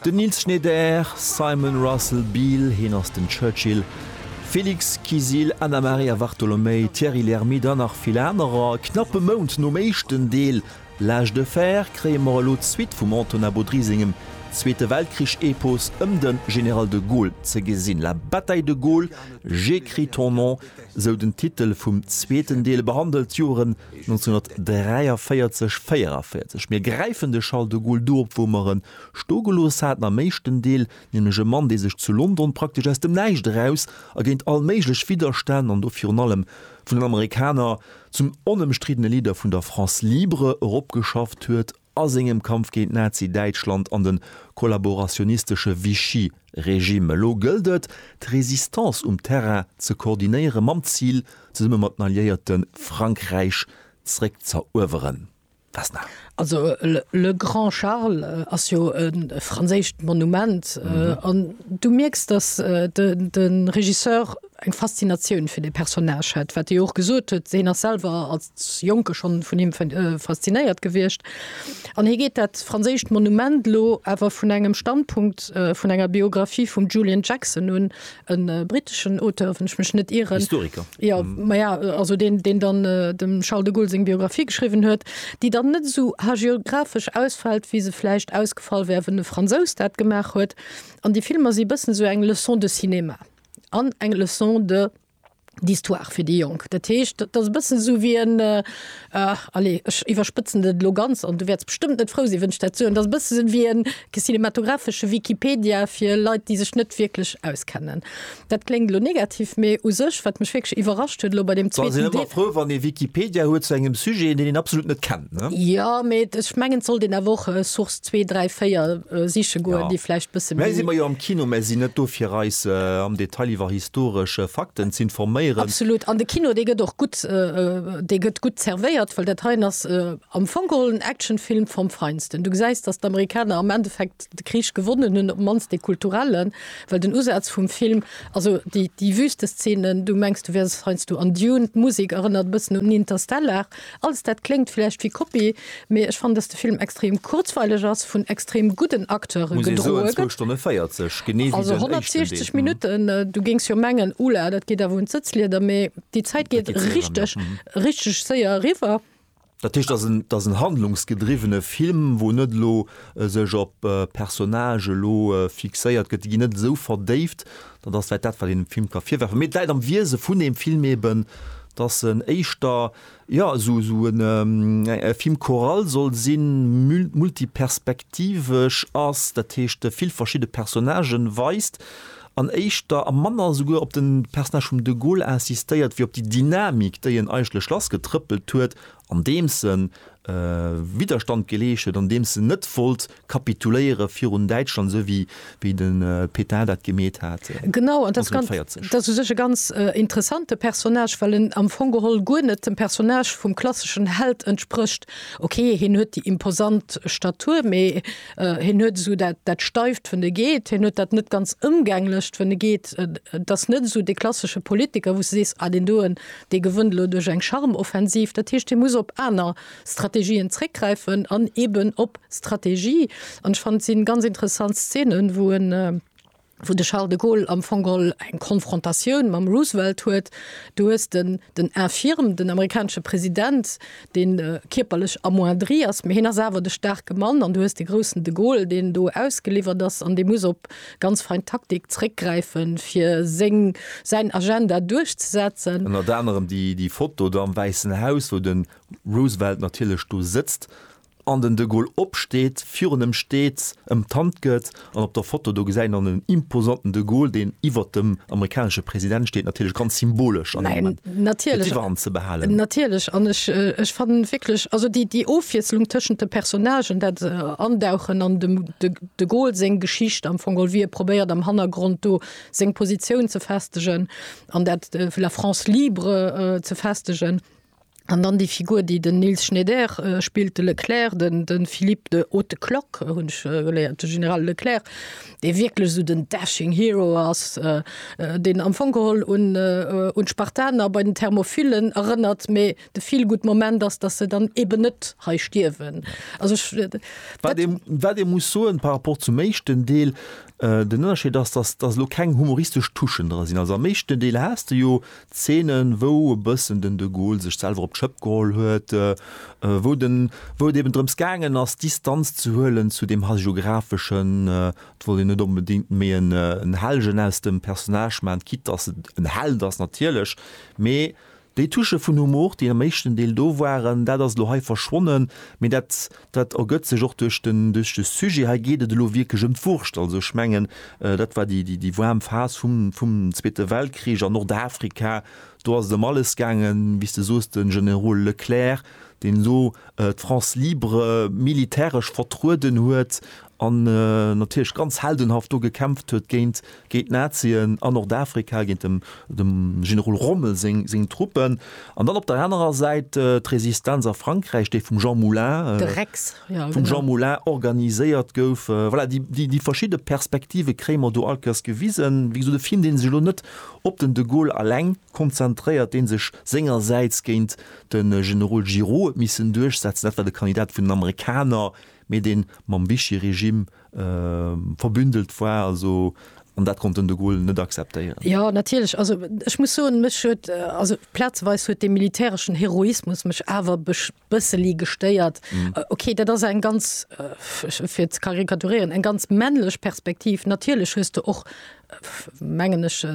Den Nils Schneider, Simon Russell Beale, hien ass den Churchill, Félix Kisil, Anna Maria Vartolomei, Thierry Lhermitte an nach vill anerer. Knapp e Mount nom éischten Deel L'âge de fer kréie mer elo d'Suite vum Antonin Baudry sengem Zweete Weltkrich-Epos ëm de General de Gaulle ze gesinn. La bataille de Gaulle, j'écris ton nom, sou den Titel vum zweeten Deel, behandelt d'Joren 1943, 44. Mir gräifen de Charles de Gaulle do op, wou mer e Sto gelooss haten, am éischten Deel nämlech e Mann, dee sech zu London praktesch aus dem Näischt eraus a géint all méiglech Widderstänn, an do virun allem vun den Amerikaner, zum onëmstriddene Leader vun der France libre eropgeschafft huet a sengem Kampf géint Nazi-Däitschland an de kollaborationistesche Vichy-Regime. Elo gëllt et, d'Résistance um Terrain ze koordinéieren, mam Zil, zesumme mat den Alliéierte Frankräich zréckzëerueweren. Was nach? Also le Grand Charles ass jo e franséischt Monument an mhm. äh, du mierks, dass äh, de, de Regisseur eng Faszinatioun fir de Personage hat, wat Dir och gesot huet, seen ass selwer als Jonke schon vun him äh, faszinéiert gewircht. An hie geet dat franséischt Monument lo awer vun engem Standpunkt äh, vun enger Biografie vum Julian Jackson un, e briteschen Auteur, wann ech mech net ieren. Historiker. Ja, mm. ma ja, also den, den dann äh, dem Charles de Gaulle seg Biografie geschrieben huet, déi dann net so hagiographisch ausfällt, wie se fleischicht ausgefall wär, wenn de Franzous dat gemacht huet. An die Filmer si bëssen so eng Leçon de Cinema an eng Leçon de d'Histoire fir déi Jonk. Dat heescht, dat ass e bëssen esou wéi en, allez, ech iwwerspëtzen et elo ganz an du wäerts bestëmmt net frou sinn, wann ech dat soen, dat ass e bësse esou wéi e cinematographesche Wikipedia fir Leit, déi sech net wierklech auskennen. Dat kléngt elo negativ, mee u sech, wat mech wierklech iwwerrascht huet elo bei deem zweeten Deel. Ech sinn ëmmer frou, wann ee Wikipedia huet zu engem Sujet, deen een absolut net kennt. Ne? Ja, mee ech mengen, sollt een awer och äh, Source 2, 3, 4 äh, siche goen, Ja. déi vläicht bësse Mä si méi. mer jo am Kino, mä si net do fir eis äh, am Detail iwwer historesch äh, Fakten ze informéieren. Absolut. An de Kino, dee gëtt och gutt, äh, äh, dee gëtt gutt zervéiert, well dat heien ass äh, am Fong geholl en Actionfilm vom Feinsten. Du gesäis, datt d'Amerikaner am Endeffekt de Krich gewonnen hunn, op d'mannst dee kulturellen, well den Usaz vum Film, also déi, déi Wüsteszenen, du mengs, du wäers heiansdo an Dune, d'Musik erënnert e bëssen un Interstellar, Alles dat kléngt vläicht wéi Kopie, mee ech fannen, dass de Film extrem kurzweileg ass, vun extrem gudden Acteure gedroe gëtt. Also 160 Minutten, du géings jo mengen, Oula, dat geet awer un d'Sëtzlieder, mee déi Zäit geet richteg, richteg séier eriwwer. Dat heescht, et ass en handlungsgedriwwene Film, wou net elo sech op Personnage elo fixéiert gëtt, déi ginn net esou verdéift, Dat ass vläit dat, wat een dem Film ka virwerfen. Mee et läit am Wiese vun deem Film eben, dass en éischter, jo, esou, esou en, e Film choral soll sinn, mult, multiperspektivesch ass, dat heescht, vill verschidde Personnagen weist an éischter a manner esouguer op de Personnage vum de Gaulle insistéiert wéi op déi Dynamik, déi en eigentlech lassgetrëppelt huet andeems se Widderstand geleescht huet, andeems se net wollt kapituléiere virun Däitschland, esou wéi de Pétain dat gemeet hat 1914. Genau, an dat ass u sech e ganz interessante Personnage, well en am Fong geholl guer net dem Personnage vum klasseschen Held entsprécht. Ok, hien huet déi imposant Statur, mee hien huet esou dat Steift, wéi e geet, hien huet dat net ganz Ëmgänglecht, wéi e geet. Et ass net esou dee klassesche Politiker, wou s de sees, ah, deen doen, Dee gewënnt elo duerch eng Charme-Offensiv. Dat heescht, hie muss op aner Strategien zréckgräifen an eben op Strategie. An ech fannen, et si ganz interessant Szenen, wou en, wou de Charles de Gaulle am Fong geholl eng Konfrontatioun mam Roosevelt huet. Du hues den, den Infirme, den amerikanesche President, deen kierperlech amoindri ass, mä hien ass awer de staarke Mann. An du hues de groussen de Gaulle, deen do ausgeliwwert ass an dee muss op, Ganz fein Taktik, zréckgräifen fir seng, säin Agenda duerchzesetzen. Ënnert anerem déi, déi Foto do am Wäissen Haus, wou de Roosevelt natierlech do sëtzt an den de Gaulle opsteet, virun em steet, em d'Hand gëtt. An op der Foto do gesäit een dann en imposanten de Gaulle, deen iwwert dem amerikanesche President steet, natierlech ganz symbolesch an deem Moment fir d'Iwwerhand ze behalen. Natierlech, an ech, ech fannen wierklech, also déi, déi Ofwiesslung tëschent de Personnagen, dat Andauchen an dem de. De Gol seng Geschicht am Fong geholl, wéi e probéiert am Hannergrond do seng Positioun ze festegen an dat fir la France libre ze festegen. An dann déi Figur, déi den Nils Schneider spillt, de Leclerc, den, den Philippe de Haute Cloque hunn ech geléiert, de General Leclerc, dee wierklech esou den dashing hero ass, deen am Fong geholl un, un d'Spartaner bei den Thermopylen erënnert, mee, De Feelgood-Moment ass, datt se dann eeben net hei stierwen. Also ech, dat. Wat ee, wat ee muss soen par rapport zum éischten Deel, den Ënnerscheed ass, datt, datt elo keng humoristesch Touchen dra sinn. Also am éischten Deel has de jo Zeenen, wou e bëssen den de Gaulle sech selwer op d'Schëpp geholl huet, wou den, wou et eeben drëms gaangen ass, Distanz ze huelen zu deem Hagiographeschen. Et wollt een net onbedéngt méi en Helgen aus dem Personnage maachen, quitte datt et en Held ass natierlech, mee Déi Touche vun Humor, déi am éischten Deel do waren, dat ass elo hei verschwonnen, mee dat, dat ergëtt sech och duerch den, duerch de Sujet. Hei geet et elo wierklech ëm d'Wurscht. Also ech mengen, dat war déi, déi, déi waarm Phas vum, vum Zweete Weltkrich an Nordafrika, do ass et ëm alles gaangen, wéi s de soos, de Generol Leclerc, deen elo d'France libre militäresch vertrueden huet an natierlech ganz heldenhaft do gekämpft huet géint géint d'Nazien a Nordafrika, géint dem Generol Rommel seng Truppen, an dann op der anerer Säit d'Resistenz a Frankräich, déi vum Jean Moulin, de Rex, jo, vum Jean Moulin organiséiert gouf. Voilà, déi verschidde Perspektive kréie mer do all Kéiers gewisen. Wéi gesot, e Film, dee sech elo net op den de Gaulle alleng konzentréiert, dee sech sengersäits géint de Generol Giraud huet missen duerchsetzen, dat war de Kandidat vun den Amerikaner, mee dee mam Vichy-Regime verbündelt war also an dat konnt den de Gaulle net akzeptéieren. Jo natierlech, also ech muss soen, mech huet, also plazeweis huet dee militäreschen Heroismus mech awer e bësseli gestéiert. Okay, dat ass eng ganz, fir ze karikaturieren, eng ganz männlech Perspektiv. Natierlech hues de och mengen ech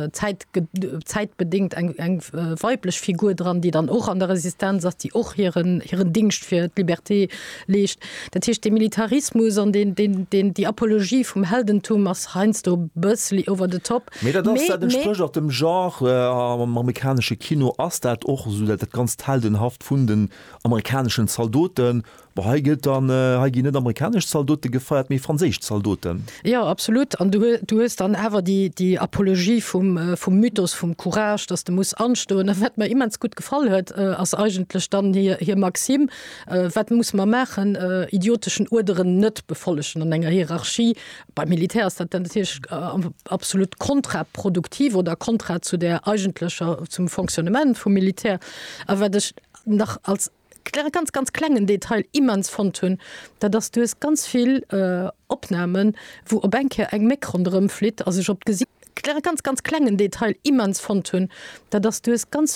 zäitbedingt eng weiblech Figur dran, déi dann och an der Resistenz ass, déi och hiren Dingscht fir d'Liberté leescht. Dat heescht de Militarismus an déi Apologie vum Heldentum ass heiansdo e bësseli over the top. Mee dat ass, dat entsprécht och dem Genre. Am amerikanesche Kino ass dat och esou, dat ganzt Heldenhaft vun den amerikaneschen Zaldoten. Bon, hei gëllt dann, hei ginn net amerikanesch Zaldote gefeiert, mee franséisch Zaldoten. Jo, absolut. An du hues dann awer déi Apologie vum Mythos vum Courage, dass de muss anstoen. A wat mer immens gutt gefall huet, ass eigentlech dann hir Maxime, Wat muss mer maachen? Idioteschen Uerderen net befollegen an enger Hierarchie. Beim Militär ass dat natierlech absolut kontraproduktiv oder kontra zu der eigentlecher, zum Fonctionnement vum Militär. A wat ech nach als. kle ganz ganz klengen Detail immens fonnt hunn, dat ass, du hues ganz vill Opnahmen, wou op eng Kéier eng Méck ronderëmflitt a sech op d'Gesi. Kle ganz ganz klengen Detail immens fonnt hunn, dat ass, du hues ganz vill.